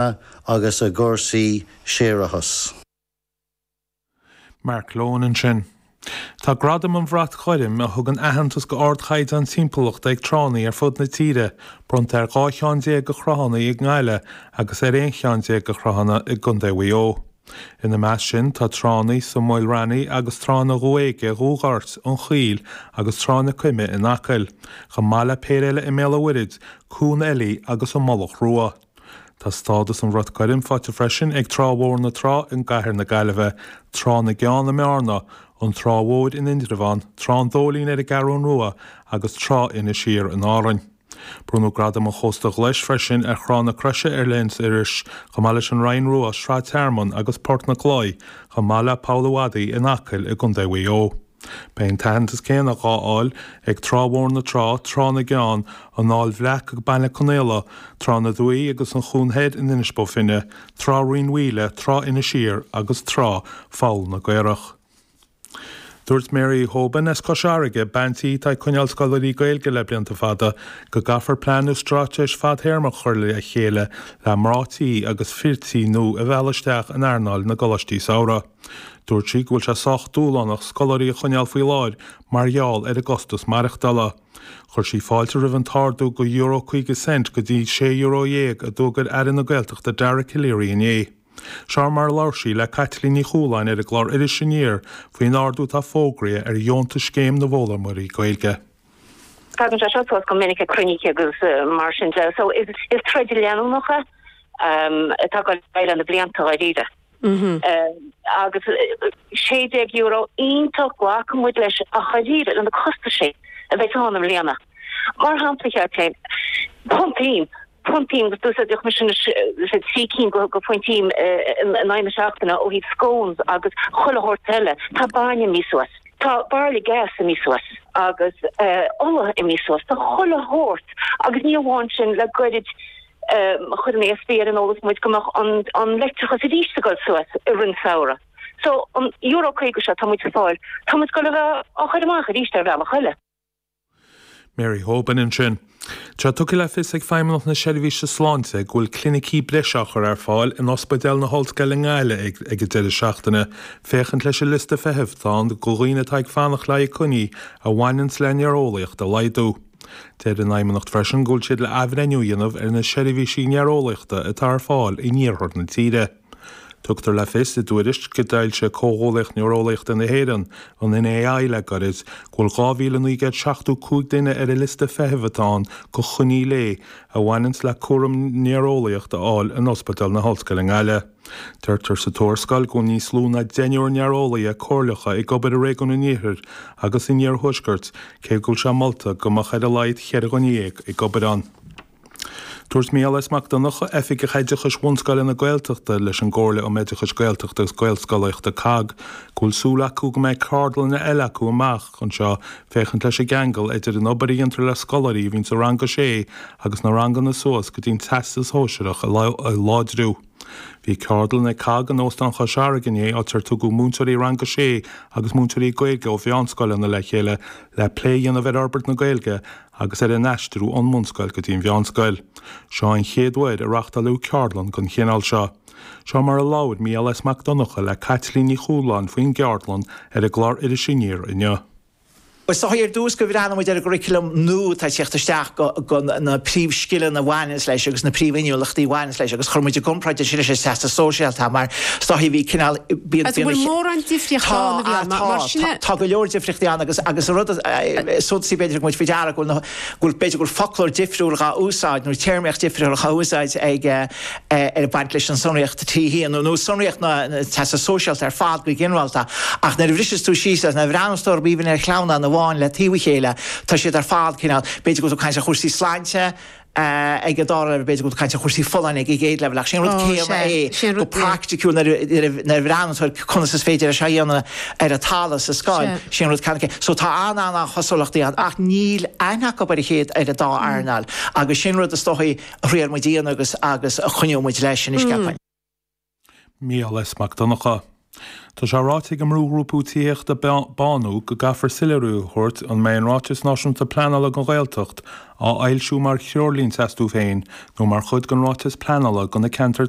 Bhanna agus i gcúrsaí séarachas. Mark Lohan ansin. Tá Gradam an Bhrait Ghoirm, a thugann aitheantas do ardchaighdeán timpeallachta ag tránna ar fud na tíre, bronnta ar dhá cheann déag de thránna i nGaillimh agus ar aon cheann déag de thránna i gContae Mhaigh Eo. Ina measc sin tá tránna sa Mhala Raithní agus tránna Dhumha Éige, Dhumha Goirt, an Chaoil agus Trá na Coime in Acaill, chomh maith le péire eile i mBéal an Mhuirthead, Cuan Eilí agus an Mullach Rua. Tá stádas an Bhrait Ghoirm faighte freisin ag Trá Bhóthar na Trá i gCathair na Gaillimhe, Trá na gCeann i mBearna, An Trá Mhór in Indreabhán, Trá an Dóilín ar an gCeathrún Rua agus Trá Inis Oírr in Árainn. Bronnadh Gradam an Chósta Ghlais freisin ar Thrá na Croise ar Leithinis Iorrais, chomh maith leis an Rinn Rua, Srath, Tearmann agus Port an Chlóidh, chomh maith le Poll a' Mhadaidh in Acaill i gContae Mhaigh Eo. Beidh an t-aitheantas céanna dhá fháil ag Trá Bhóthar na Trá, Trá na gCeann, An Aill Bhreac i mBaile Conaola, Trá na Dumhaí agus an Chinn Thoir in Inis Bó Finne, Trá Rinn Mhaoile, Trá Inis Oírr agus Trá Pholl na gCaorach. Dúirt Mary Hoban as Cois Fharraige, bean tí atá ag coinneáil scoláirí Gaeilge le blianta fada, go gcaithfear plean nó stráitéis fadthéarmach a chur le chéile le mná tí agus fir tí nua a mhealladh isteach in earnáil na gcoláistí samhraidh. Dúirt sí go bhfuil sé sách dúshlánach scoláirí a choinneáil faoi láthair mar gheall ar an gcostas maireachtála. Chuir sí fáilte roimh an t-ardú de Euro 50 Cent go dtí sé Euro déag a d'fhógair Aire na Gaeltachta Dara Calleary inné. Seo mar a labhair sí le Caitlín Ní Chualáin ar an gclár Iris Aniar faoin ardú atá fógraithe ar dheontas Scéim na bhFoghlaimeoirí Gaeilge. Tagann sé seo suas go minic ag cruinnithe agus mar sin de so is troid leanúnach é atá againn le na blianta dháiríre. Agus €16 iontach glacfaidh muid leis ach dáiríre leis na costais a bheas ann i mbliana. Mar shampla, cheap sé, punt im, punt im agus d'úsáideadh mise na trí cinn de punt im in aghaidh na seachtaine ó thaobh scones agus chuile shórt eile. Tá bainne imithe suas, tá bairille gas imithe suas agus ola imithe suas, tá chuile shórt agus ní amháin sin, le gairid Chuir an ESB ar an eolas muid go mbeadh an leictreachas arís ag dul suas i rith an samhradh so an Euro 50 seo atá muid ag fáil, tá muid ag dul a bheith á chur amach arís ar bhealach eile. Mary Hoban ansin. Tá tugtha le fios ag Feidhmeannacht na Seirbhíse Sláinte go bhfuil clinicí breise á chur ar fáil in Ospidéal na hOllscoile i nGaillimh ag an deireadh seachtaine féachaint leis an liosta feithimh atá ann do dhaoine atá ag fanacht le haghaidh coinní a bhaineanns le néareolaíocht a laghdú. Deir an Fheidhmeannacht freisin go bhfuil siad le athbhreithniú a dhéanamh ar na seirbhísí néareolaíochta atá ar fáil in iarthar na tíre. Tugtar le fios i dtuairisc a d'fhoilsigh Comhghuallaíocht Néareolaíochta na hÉireann, an NAI, le gairid go bhfuil 2,975 duine ar an liosta feithimh atá ann go choinní a bhaineanns le cúram néareolaíocht a fháil in Ospidéal na hOllscoile i nGaillimh. Deirtear sa tuarascáil go bhfuil níos lú ná deichniúr néareolaí comhairleacha ag obair i réigiún an Iarthair agus an Iarthuaiscirt, cé go bhfuil sé molta go mbeadh ar a laghad ceithre dhuine dhéag ag obair ann. Dúirt Micheál S. Mac Donncha, Oifigeach Oideachais Bhunscoileanna Gaeltachta leis an gComhairle um Oideachas Gaeltachta agus Gaelscolaíochta, cogg, go bhfuil súil acu go mbeidh ceardlanna eile acu amach, anseo, féachaint leis an gceangal idir an obair a dhéantar le scoláirí a bhíonn sa rang 6 agus na ranganna suas go dtí an Teastas Sóisearach a láidriú. Bhí ceardlann ag cogg in Óstán Chois Fharraige inné áit ar tugadh múinteoirí rang 6 agus múinteoirí Gaeilge ó mheánscoileanna le chéile le plé a dhéanamh ar fhorbairt na Gaeilge agus ar an aistriú ón mbunscoil go dtí an mheánscoil. Seo an chéad uair a reachtáileadh ceardlann den chineál seo. Seo mar a labhair Micheál S. Mac Donncha le Caitlín Ní Chualáin faoin gceardlann ar an gclár Iris Aniar inniu. Is dóigh ar dtús go mbreathnaigh muid ar an gcurriculum nua atá ag teacht isteach, na príomhscileanna a bhaineanns leis agus na príomhinniúlachtaí a bhaineanns leis agus chuir muid i gcomparáid é sin leis an Teastas Sóisearach mar is dóigh bhí cineál, bíonn, bíonn, an bhfuil mórán difríocht ann, a Mhicheál, mar, mar sin, tá, tá go leor difríochtaí ann agus, agus an rud is suntasaí b'fhéidir a thug muid faoi deara go bhfuil na, go bhfuil, b'fhéidir go bhfuil foclóir difriúil dhá úsáid nó téarmaíocht difriúil dhá úsáid ag, ag baint leis an sonraíocht trí híonú nó sonraíocht na Teastas Sóisearach ar fad go ginearálta, ach nuair a bhriseas tú síos síos nuair a bhreathnaíonns tú b'aoibhinn ar chlann amháin le taobh a chéile, tá siad ar fad cineál, b'fhéidir go bhfuil tú ag caint ar chúrsaí sláinte ag an dara leibhéal, b'fhéidir go bhfuil tú ag caint ar chúrsaí folláine ag an gcéad leibhéal, ach sin an rud céanna é go praiticiúil nuair a bhreathnaíonn tú ar conas is féidir é seo a dhéanamh ar an talamh, sa scoil, sin an rud céanna é. So tá an-an-an chosúlachtaí ann ach níl aithne acu ar a chéile, ar an dá earnáil agus sin rud is dóichí, Thriail muid a dhéanamh agus agus coinneoidh muid leis in uisce achan. Micheál S. Mac Donncha. Tá sé ráite ag an mbrúghrúpa Tithíochta Bánú go gcaithfear soiléiriú a thabhairt an mbeidh an Ráiteas Náisiúnta Pleanála don Ghaeltacht á fhoilsiú mar threoirlínte astu féin nó mar chuid den Ráiteas Pleanála do na ceantair